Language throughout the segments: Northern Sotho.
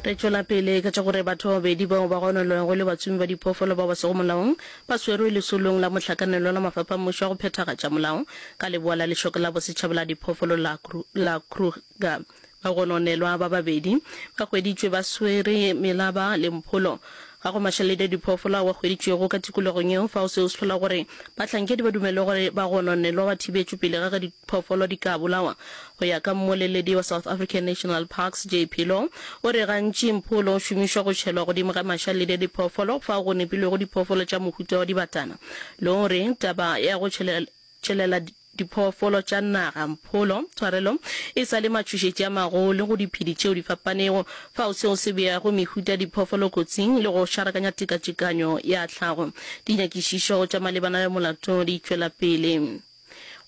Re tšwela pele ka tša gore batho ba babedi bao ba gononwego le batsomi ba diphoofolo bao ba sego molaong ba swerwe lesolong la mohlakanelwa la mafapha a mmušo a go phethagatša molao ka leboa la lešoka la bosetšhaba la diphoofolo la la Kruger. Bagononelwa ba babedi ba hweditšwe ba swere Melaba le Mpholo Ga go mašeledi a diphoofolo ao a hweditšwego ka tikologong yeo fao seo se hlola gore bahlankedi ba dumelwe gore ba gononelwa ba thibetšwe pele ga ge diphoofolo di ka bolawa. Go ya ka mmoleledi wa South African National Parks, Jay Philo, o re gantši mpholo o šomišwa go tšhelwa godimo ga mašaledi a diphoofolo fao go nepilwego diphoofolo tša mohuta wa dibatana le gore taba ya go tšhelela diphoofolo tša naga, mpholo, tshwarelo e sa le matšhošetši a magolo go diphedi tšeo di fapanego, fao seo se beago mehuta ya diphoofolo kotsing le go šarakanya tekatekanyo ya tlhago. Dinyakišišo tša malebana le molato di tšwela pele.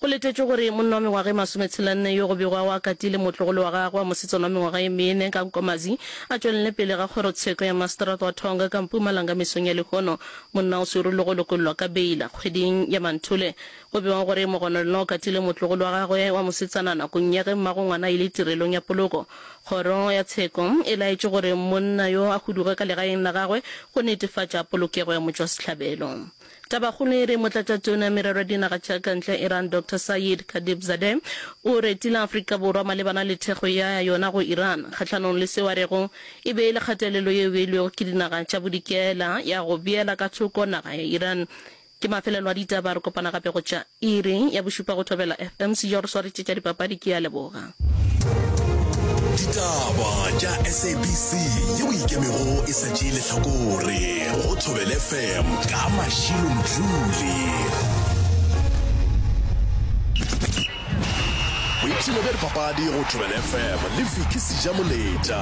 Go letetšwe gore monna wa mengwaga e masometshelanne yo go bego a o akatile motlogolo wa gagwe wa mosetsana wa mengwaga ye mene ka Nkomazi a tšwelele pele ga kgorotsheko ya maseterata wa Tonga ka Mpumalanga mesong ya lehono. Monna o swerwe le go lokollwa ka beila kgweding ya Manthole Go bewa gore Mogononelwa o katile motlogolo wa gagwe wa mosetsana nakong ya ge mmago ngwana a ile tirelong ya poloko. Kgoro ya tsheko e laetše gore monna yo a huduge ka legaeng la gagwe go netefatša polokego ya motšwasehlabelo. Tabakgolo e re Motlatšatona Merero ya Dinaga tša ka Ntle ya Iran Doctor Sayeed Khatibzadeh o retile Afrika Borwa malebana le thekgo ya yona go Iran kgahlanong le seo a rego e be e le kgatelelo yeo e beilwego ke dinaga tša bodikela ya go beela ka thoko naga ya Iran Ke mafelelo a ditaba, re kopana gape go tša iri ya bošupa go Thobela FM. Sejo a re swaretše tša dipapadi, ke a leboga. Ditaba tša SABC yeo e ikemego e sa tšee lehlakore go Thobela FM ka Mashilo Mdluli. Boipshino bja dipapadi go Thobela FM le Vicky Sejamoletša.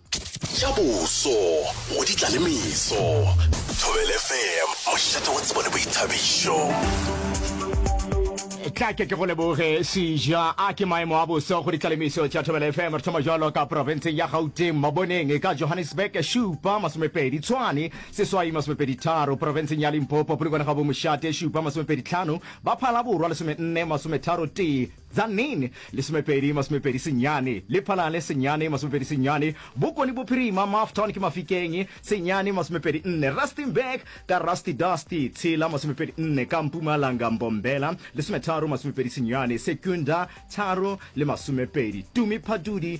Ja boso, go di tla le meso. Thobel FM, mošate wa tsebo le boithabišo. tla ke ke go leboge seja a ke maemo a boso go ditlalemiso tša thobela fm re thoma jalo ka profenseng ya gauteng maboneng ka johannesburg šupa masomepedi tshwane seswai masomepedi tharo profenseng ya limpopo polokwane ga bomošate šupa masomepedi tlhano ba phalaborwa lesomenne masometharo tee Tzaneen, lesomepedi, masomepedi senyane, Lephalale, senyane, masomepedi senyane, Bokone Bophirima, Mafton, ke Mafikeng, senyane, masomepedi nne, Rustenburg, ka Rusty Dusty, tshela, masomepedi nne, ka Mpumalanga, Mbombela, lesometharo, masomepedi senyane, Secunda, tharo le masomepedi, Tumi Phadudi,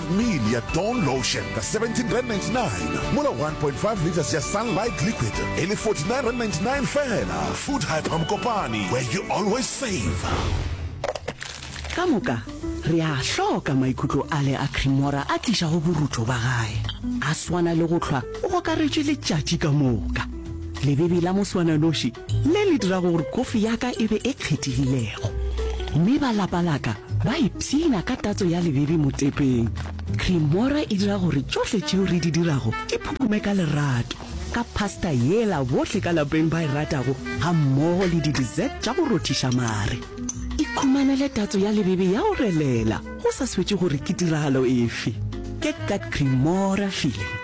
ml ya Dawn Lotion ka 17 rand 99 mola 1.5 litres ya Sunlight Liquid e le 49 rand 99 fela. Food Hyper Mokopane, where you always save. Ka moka re a hloka maikutlo ale a Cremora a tlišago borutho ba gae, a swana le go hlwa o gokaretšwe letšatši ka moka. Lebebi la moswananoši le le dirago gore kofi ya ka e be e kgethegilego. Mme ba lapa la ka ba ipshina ka tatso ya lebebi motepeng. Creamora e dira gore tšohle tšeo re di dirago di phupume ka lerato. Ka pasta yela bohle ka lapeng ba e ratago gammogo le di-dessert tša go rothiša mare. Ikhumanele tatso ya lebebi ya go relela go sa swetše gore ke tiragalo efe. Ke Kat Creamora feeling.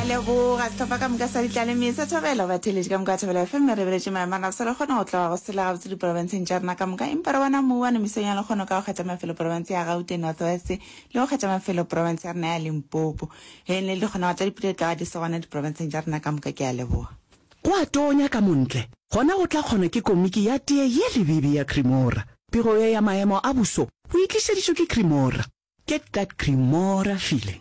leboga setlhopha ka moka sa ditlaleme sa thobela ba theletše ka moka wa thobela fm re beletše maemana se le kgone go tloga go sela gabotse diporofenseng tša rena ka moka empa re bona mou wa nemisong ya lekgono ka go kgetha mafelo porofense ya gaute north west le go kgetha mafelo porofense ya rena ya limpopo ge ne le di kgonago tša dipula di tlaga di se gona diporofenseng tša rena ka moka ke a leboga Go a tonya ka montle, gona go tla kgona ke komiki ya tee ye lebibi ya Cremora. Pego ye ya maemo a buso bo e tlišeditšwe ke Cremora. Get that Cremora feeling.